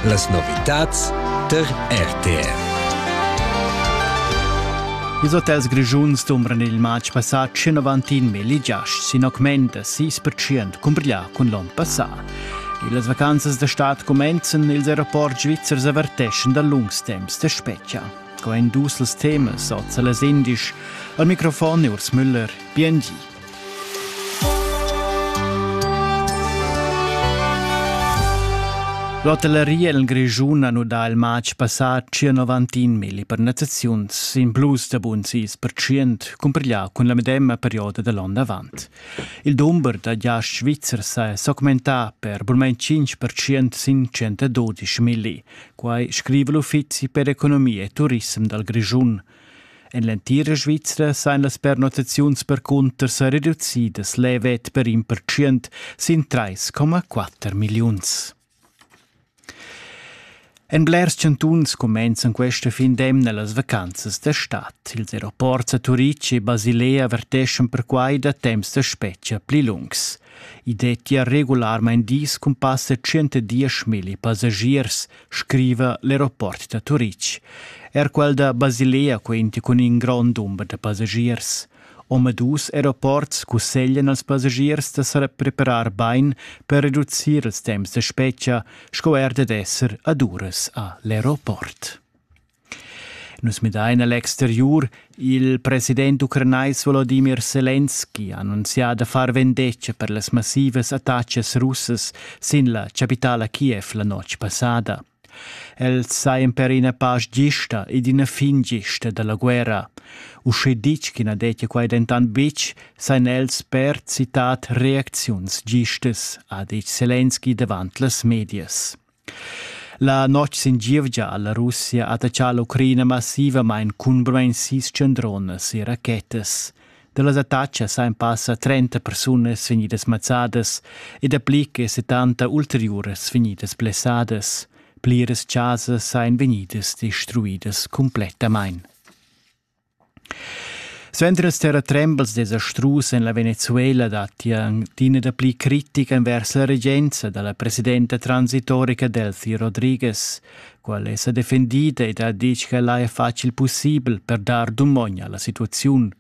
Las novitads tar RTR. Ils hotels grischuns dumbran il matg passà 191 mil giasts sin augment da 6% cumbrià cun l'onn passà. Las vacanzas da stad cumenzan, ils aeroports svizzers averteschan da lungs temps da spetga. Co èn dus els temas oz a las indisch? Al microfon Urs Müller, BNG. L'hotelleria el Grischun ha nudà il matg passà 91 milli pernottaziuns in plus da bun 6% cumpiglià cun la medemma perioda da l'onn avant. Il dumber da giasts svizzers è s'augmentà per burmain 5% sin 112 milli. Quai scriva l'Uffizi per economia e turissem dal Grischun. En l'entira Svizra sajan las pernottaziuns percunter sa reducidas levet per in percient sin 3,4 milliuns. En blers chantuns cumenzan questa fin d'emna las vacanzas da stad. Ils aeroports a Turitg e Basilea verteschan perquai da temps da spetga pli lungs. I dettia regularmain dis cun passa 110 milli passagiers, scriva l'aeroport da Turitg. Er quel da Basilea quenti cun in grond dumber da passagiers. Omadus aeroports cusseglian als passagiers da sa preparar bain per reducir ils temps da spetga sco er dad esser ad uras a l'aeroport. Nus midain a l'exteriur. Il president ucranais Volodimir Selenski ha annunzià da far vendetga per las massivas attachas russas sin la chapitala Kiev la notg passada. Els sajan per ina pasch gista ed ina fin gista da la guerra. Usche ditg ch'i na dettia quai dentant betg, sajan els per citat reacziuns gistas, ha ditg Selenski davant las medias. La notg sin gievgia ha la Russia attaccà l'Ucraina massivamain cunbarmain sis tschendronas e rachetas. Da las attacas han passa 30 persunas vegnidas mazzadas e dapli che 70 ulteriuras vegnidas blessadas. Pliras chasas ein vegnidas destruidas cumplettamain. Suenter ils terratrembels desastrus en la Venezuela datti adina dapli critica envers la regenza da la presidenta transitorica Delcy Rodriguez. Quella è sa defendida ed ha ditg ch'ella è facil pussibel per dar dumogn a la situaziun.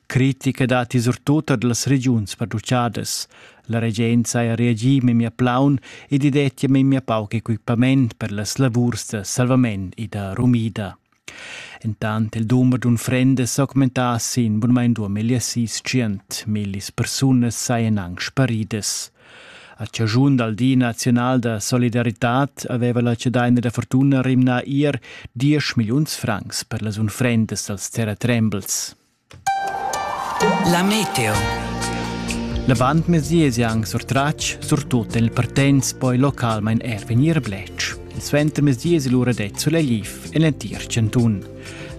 Critica datti surtut er las regiuns producidas. La regenza ha reagì memia plaun ed i dettia memia pauc equipament per las lavurs da salvament e da rumida. Entant il dumber d'unfrendas s'augmentà sin bunmain duamillia sis tschient. Millis persunas sajan anc sparidas. A chaschun dal Di naziunal da solidaritad aveva la Cedaina da fortuna rimnà ir diesch milliuns francs per las unfrendas dals terratrembels. La meteo. La bandmezia es anc surtratg, surtut en il Partenz, poi localmain er vegnir bletsch. Il suentermezia es lura det sulegliv en l'entir chantun.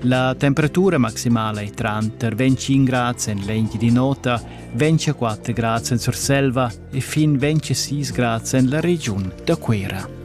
La temperatura maximala è tranter 25 grads en lenti di nota, 24 grads en Surselva e fin 26 grads en la regiun da Cuera.